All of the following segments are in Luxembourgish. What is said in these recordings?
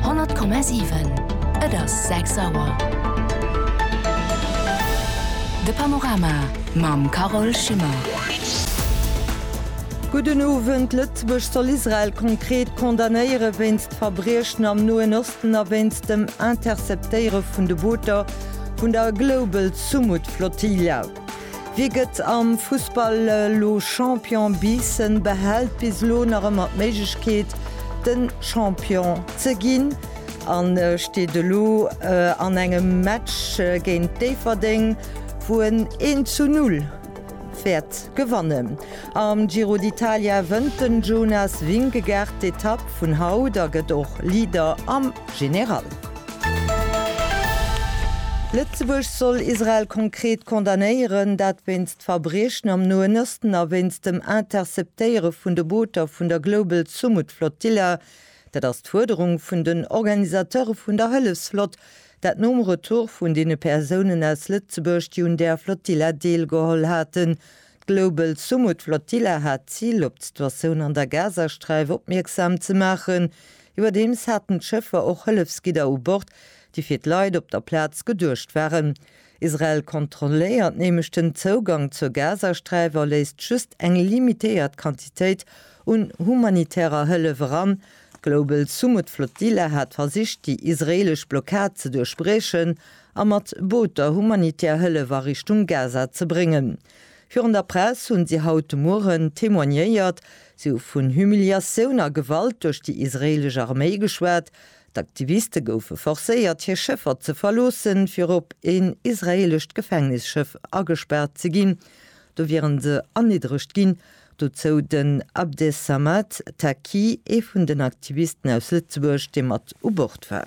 100,7 Et ass 6 Auer. De Panorama mam Carole Schimmer. Gudden Owend. Lëtzebuerg soll Israel konkret condamnéiere wéinst Verbriechen am Noen Osten a wéinst dem Interceptéiere vun de Booter vun der Global Sumud Flotilla. Wie gëtt am Fussball elo Champion? Biissen behält bis elo nach ëmmer d'Méiglechkeet, de Champion ze ginn a steet elo an engem Match géint Déifferdeng, wou en een zu null wäert gewannen. Am Giro d'Italia wënnt den Jonas Vingegaard d'Etapp vun haut a gëtt och Leader am General. Lëtzebuerg soll Israel konkret condamnéieren, dat wéinst Verbriechen am Noen Osten a wéinst dem Interceptéiere vun de Booter vun der Global Sumud Flotilla. Dat ass d'Fuerderung vun den Organisateure vun der Hëllefsflott, dat nom Retour vun deene Persounen aus Lëtzebuerg, déi un där Flotilla deelgeholl haten. D'Global Sumud Flotilla hat d'Zil, op d'Situatioun an der Gazasträif opmierksam ze maachen, Iwwerdeems haten d'Schëffer och Hëllefsgidder u Bord, déi fir d'Leit op der Plaz geduecht waren. Israel kontrolléiert nämlech den Zougang zur Gazasträif a léisst just eng limitéiert Quantitéit un humanitärer Hëllef eran. D'Global Sumud Flotilla hat versicht, déi israeelesch Blockad ze duerchbriechen a mat Booter humanitär Hëllef a Richtung Gaza ze bréngen. Virun der Press hunn si haut de Mueren témoignéiert. Si hu vun Humiliatioun a Gewalt duerch déi israeelesch Arméi geschwat. D'Aktiviste goufe forcéiert, hir Schëffer ze verloossen, fir op een israeelescht Gefängnisschëff agespaart ze ginn. Do wieren se erniddregt ginn. Dozou den Abdesamad Taqi, ee vun den Aktivisten aus Lëtzebuerg, dee mat u Bord war.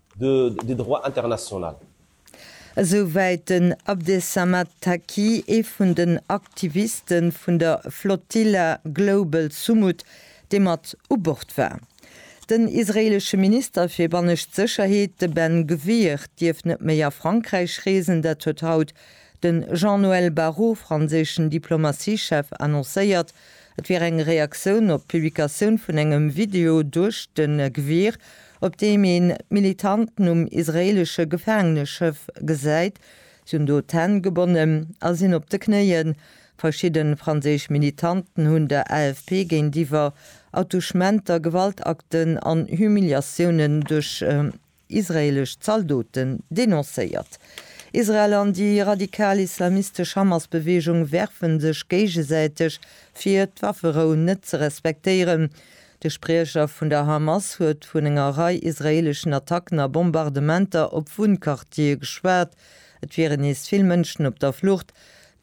de droit international. Esou wäit den Abdesamad Taqi, ee vun den Aktiviste vun der Flotilla Global Sumud, dee mat u Bord war. Den israeelesche Minister fir bannescht Sécherheet, de Ben Gvir, dierf net méi a Frankräich reesen. Dat huet haut de Jean-Noël Barrot, franséischen Diplomatiechef, annoncéiert. Et wier eng Reaktioun op d'Publikatioun vun engem Video duerch de Gvir, op deem een d'Militanten um israeelesche Gefaangeneschëff gesäit. Si hunn do d'Hänn gebonnen a sinn op de Knéien. Verschidde franséisch Militanten hunn der AFP géintiwwer Attouchementer, Gewaltakten an Humiliatiounen duerch israeelesch Zaldoten denoncéiert. Israel an déi radikal islamistesch Hamas-Beweegung werfen sech géigesäiteg fir, d'Wafferou net ze respektéieren, De Spriecher vun der Hamas huet vun enger Rei israeeleschen Attacken a Bombardementer op Wunnquartiere geschwat. Et wieren nees vill Mënschen op der Flucht.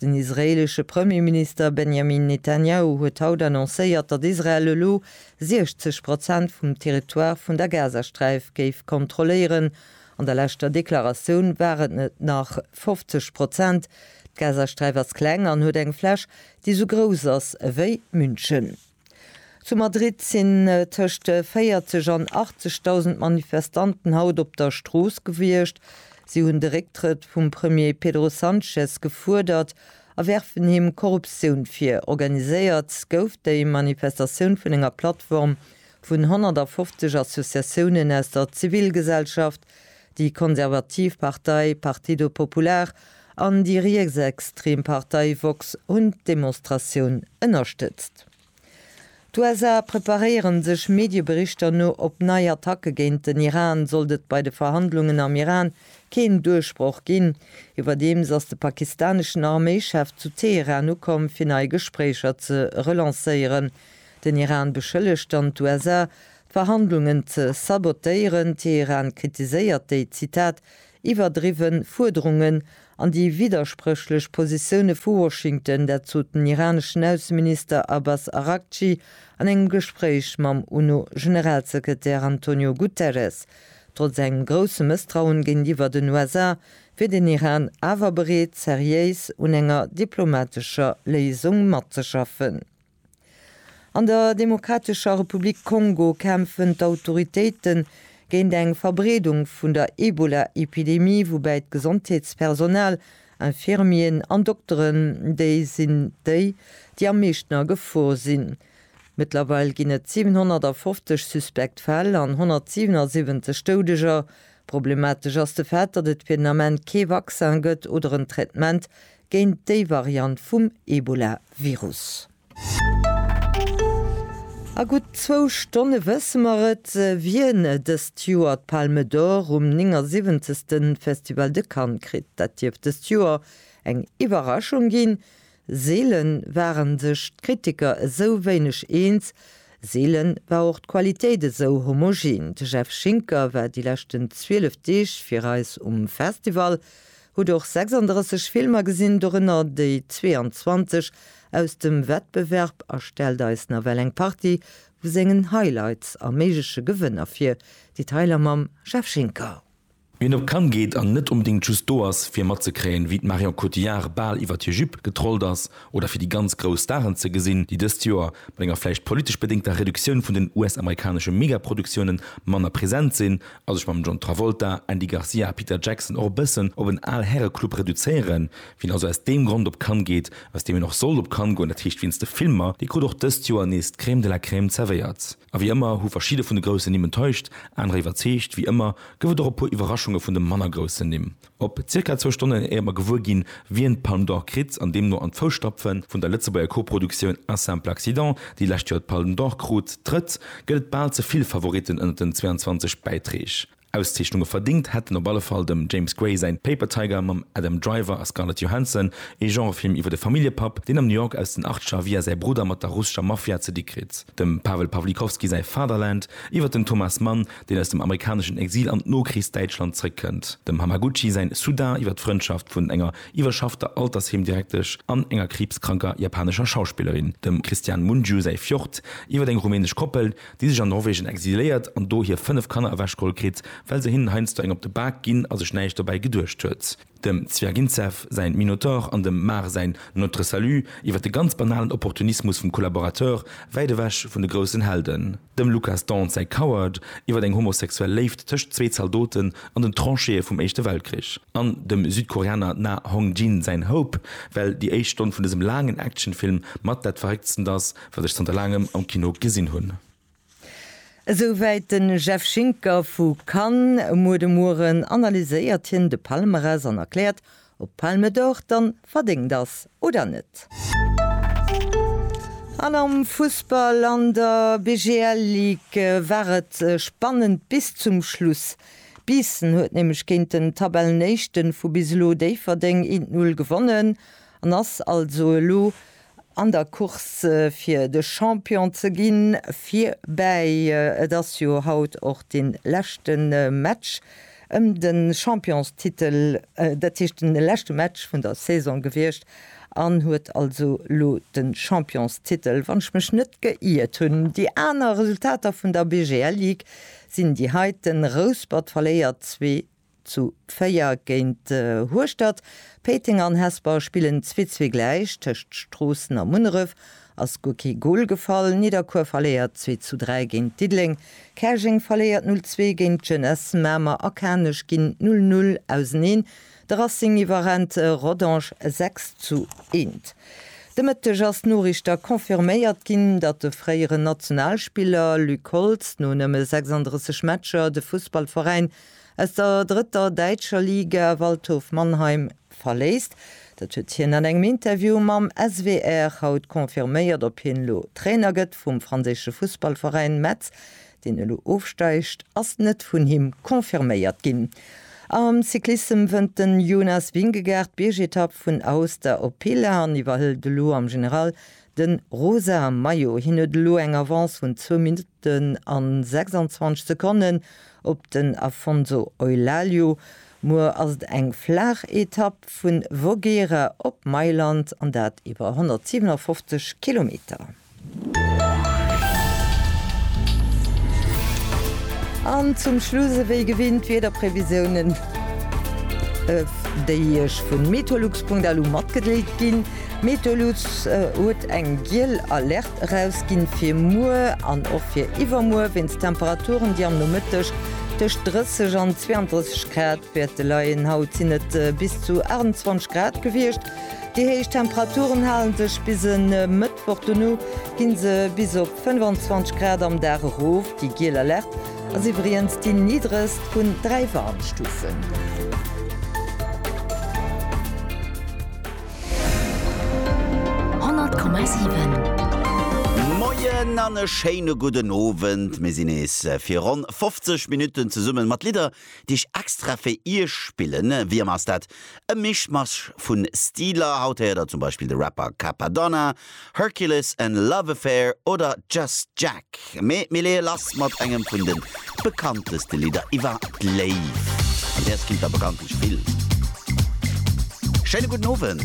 Den israeelesche Premierminister Benjamin Netanjahu huet haut annoncéiert, datt Israel elo 60 Prozent vum Territoire vun der Gazasträif géif kontrolléieren. An der leschter Deklaratioun waren et nach 50 Prozent. D'Gazasträif ass kleng an huet eng Fläch, déi esou grouss ass ewéi München. Zu Madrid sinn tëscht 40 an 80.000 Manifestanten haut op der Strooss gewiescht. Si hunn de Récktrëtt vum Premier Pedro Sanchez gefuerdert a werfen him Korruptioun vir. Organiséiert gouf déi Manifestatioun vun enger Plattform vun 150 Associatiounen aus der Zivilgesellschaft, Déi konservativ Partei Partido Popular an déi rietsextrem Partei Vox hunn d'Demonstratioun ënnerstëtzt. D'USA preparéieren sech Medieberichter no op nei Attacke géint den Iran, sollt et bei de Verhandlungen am Iran keen Duerchbroch ginn. Iwwerdeems ass de pakistaneschen Arméichef zu Teheran ukomm, fir nei Gespréicher ze relancéieren. Den Iran beschëllegt dann d'USA, d'Verhandlungen ze sabotéieren. Teheran kritiséiert déi, Zitat, iwwerdriwwen Fuerderungen an déi widderspréchlech Positioune vu Washington. Dat sot den iraneschen Ausseminister Abbas Araghchi an engem Gespréich mam UNO-Generalsekretär Antonio Guterres. Trotz engem grousse Mësstrauen géintiwwer den USA wier den Iran awer bereet, seriéis un enger diplomatescher Léisung matzeschaffen. An der Demokratescher Republik Kongo kämpfen d'Autoritéite géint eng Verbreedung vun der Ebola-Epidemie, woubäi d'Gesondheetspersonal, Infirmieren an Dokteren, déi sinn déi, déi am meeschten a Gefor sinn. Mëttlerweil ginn et 750 suspekt Fäll an 177 Doudeger. Problematesch ass de Fait, datt et fir den Ament kee Vaccin gëtt oder en Traitement géint déi Variant vum Ebola-Virus. A gutt zwou Stonne wësse mer et, wien dëst Joer d'Palme d'Or um 79. Festival de Cannes kritt. Dat dierft dëst Joer eng Iwwerraschung ginn. Seele ware sech d'Kritiker esou wéineg eens, seele war och d'Qualitéit esou homogen. De Jeff Schinker war déi leschten 12 Deeg fir eis um Festival. Hutt och 36 Filmer gesinn, dorënner déi 22 aus dem Wettbewerb a stellt eis nawell eng Partie vu sengen Highlights a méigleche Gewënner vir, déi Tyler mam Jeff Schinker. Wien op Cannes geet an net onbedéngt just do ass fir matzekréien, wéi d'Marion Cotillard bal iwwert hir Jupe getrollt ass oder fir déi ganz grouss Staren ze gesinn, déi dëst Joer, mat enger vläicht politesch bedéngter Reduktioun vun den US-amerikanesche Megaproduktiounen, manner present sinn, a sech mam John Travolta, Andy Garcia a Peter Jackson och e bëssen op en al Häreclub reduzéieren. Wien also aus deem Grond op Cannes geet, aus deem een och sollt op Cannes goen, dat heescht wéinst de Filmer, dee krut och dëst Joer nees d'Crème de la Crème zerwéiert. A wéi ëmmer hu verschidde vun de groussen Nimm enttäuscht, anerer iwwerzeegt. Wéi ëmmer gouf et och e puer Iwwerraschunge vun de manner groussen Nimm. Op zirka zwou Stonnen, éier mer gewuer ginn, wien d'Palme d'Or kritt, an deemno an d'Fousstapfe vun der Lëtzebuerger Co-Produktioun Un simple accident, déi d'lescht Joer d'Palme d'Or krut, trëtt, gëtt et bal ze vill Favoritten ënnert den 22 Bäitreeg. Auszeechnunge verdéngt hätten op alle Fall dem James Gray säin Paper Tiger mam Adam Driver a Scarlett Johansson, ee Genrefilm iwwer e Familljepapp, deen am New York aus den Achtscher via säi Brudder mat der russescher Mafia ze di kritt, dem Pawel Pawlikowski säi Fatherland iwwer den Thomas Mann, deen aus dem amerikaneschen Exil an d'Nokrichsdäitschland zréckkënnt, dem Hamaguchi säin Sudan iwwer d'Frëndschaft vun enger iwwerschaffter Altersheemdirektesch an enger kriibskranker japanescher Schauspillerin, dem Christian Mungiu säi Fjord iwwer eng rumänesch Koppel, déi sech an Norwegen exiléiert an do hir 5 Kanner ewechgeholl kritt, well se hinnen heiansdo eng op de Bak ginn a sech näischt dobäi geduecht huet, dem Zwiagintsev säin Minotaur an dem Mar säin Notre Salut iwwer de ganz banalen Opportunismus vum Collaborateur, wäit ewech vun de groussen Helden. Dem Lucas Dont säi Coward iwwer eng homosexuell Léift tëscht zwee Zaldoten an den Trancheeë vum Éischte Weltkrich an dem Südkoreaner Na Hong-jin säin Hope, well déi éischt Stonn vun dësem laangen Actionfilm mat dat Verrécktstent ass, wat ech zanter laangem am Kino gesinn hunn. Esou wäit de Jeff Schinker vu Cannes. Muer de Mueren analyséiert hien de Palmarès an erkläert, Ob d'Palme d'Or dann verdéngt ass oder net? An am Fussball an der BGL Ligue war et spannend bis zum Schluss. Biissen huet nämlech géint den Tabellenéischten vu bis elo, Déifferdeng, 1-0 gewonnen an ass also elo an der Course fir de Champion ze ginn, virbäi. Et ass jo haut och de leschte Match ëm de Championstitel, dat heescht de leschte Match vun der Saison gewiescht an huet also elo de Championstitel, wann ech mech net geiert hunn. Déi aner Resultater vun der BGL-Ligue sinn déi heiten, Rouspert verléiert 2 Zu 4 géint Hueschtert. Péiteng an Hesper spillen 2 zwee gläich. Tëscht Stroossen a Munneref ass guer kee Gol gefall. Nidderkuer verléiert 2 zu 3 géint Diddeleng. Käerjeng verléiert 0 zwee géint d'Jeunesse. Mamer a Kanech ginn 0 null auseneen. De Racing iwwerrennt Rodange 6 zu 1. De Mëtteg ass Noriichter confirméiert ginn, datt de fréieren Nationalspiller Luc Holtz no nëmme 36 Matcher de Fussballveräin Aus der drëtter däitscher Liga Waldhof Mannheim verléisst. Dat huet hien an engem Interview mam SWR haut confirméiert. Ob hien elo Trainer gëtt vum franséische Fussballveräin Metz, deen elo ofsteigt, ass net vun him confirméiert ginn. Am Cyclissem wënnt de Jonas Vingegaard d'Biergetapp vun Aosta op Pila an iwwerhëlt elo am General de rosa Maillot. Hien huet elo eng Avance vun zwou Minutten. Den an 26 Sekonnen op den Afonso Eulalie. Muer ass et eng flaach Etapp vun Voghera op Mailand an dat iwwer 157 Kilometer. An zum Schluss ewéi gewinnt d'Wiederprevisiounen déi iech vun Meteolux.lu matgedeelt ginn. Meteolux huet eng giel Alerte. Eraus ginn fir muer an och fir iwwermuer wéinst Temperaturen déi am Nomëtteg tëscht 30 an 32 Grad wäerte leien. Haut sinn et bis zu 28 Grad gewiescht. Déi héich Temperaturen halen sech bis e Mëttwoch, dono ginn se bis op 25 Grad am Dag erof. Déi giel Alerte ass iwwriens déi niddregst vun 3 Warnstufen. 100,7. Moien an e schéine gudden Owend. Mir sinn nees fir ronn 50 Minutten zesummen mat Lidder, déi ech extra fir Iech spillen. Wéi ëmmer ass dat e Mischmasch vun Stiler. Haut héiert der zum Beispill de Rapper Cappadonna, Hercules and Love Affair oder Just Jack, mee mir leeë lass mat engem vun de bekannteste Lidder iwwer d'Léift. An däers kinnt der bekanntlech vill. Schéine gudden Owend.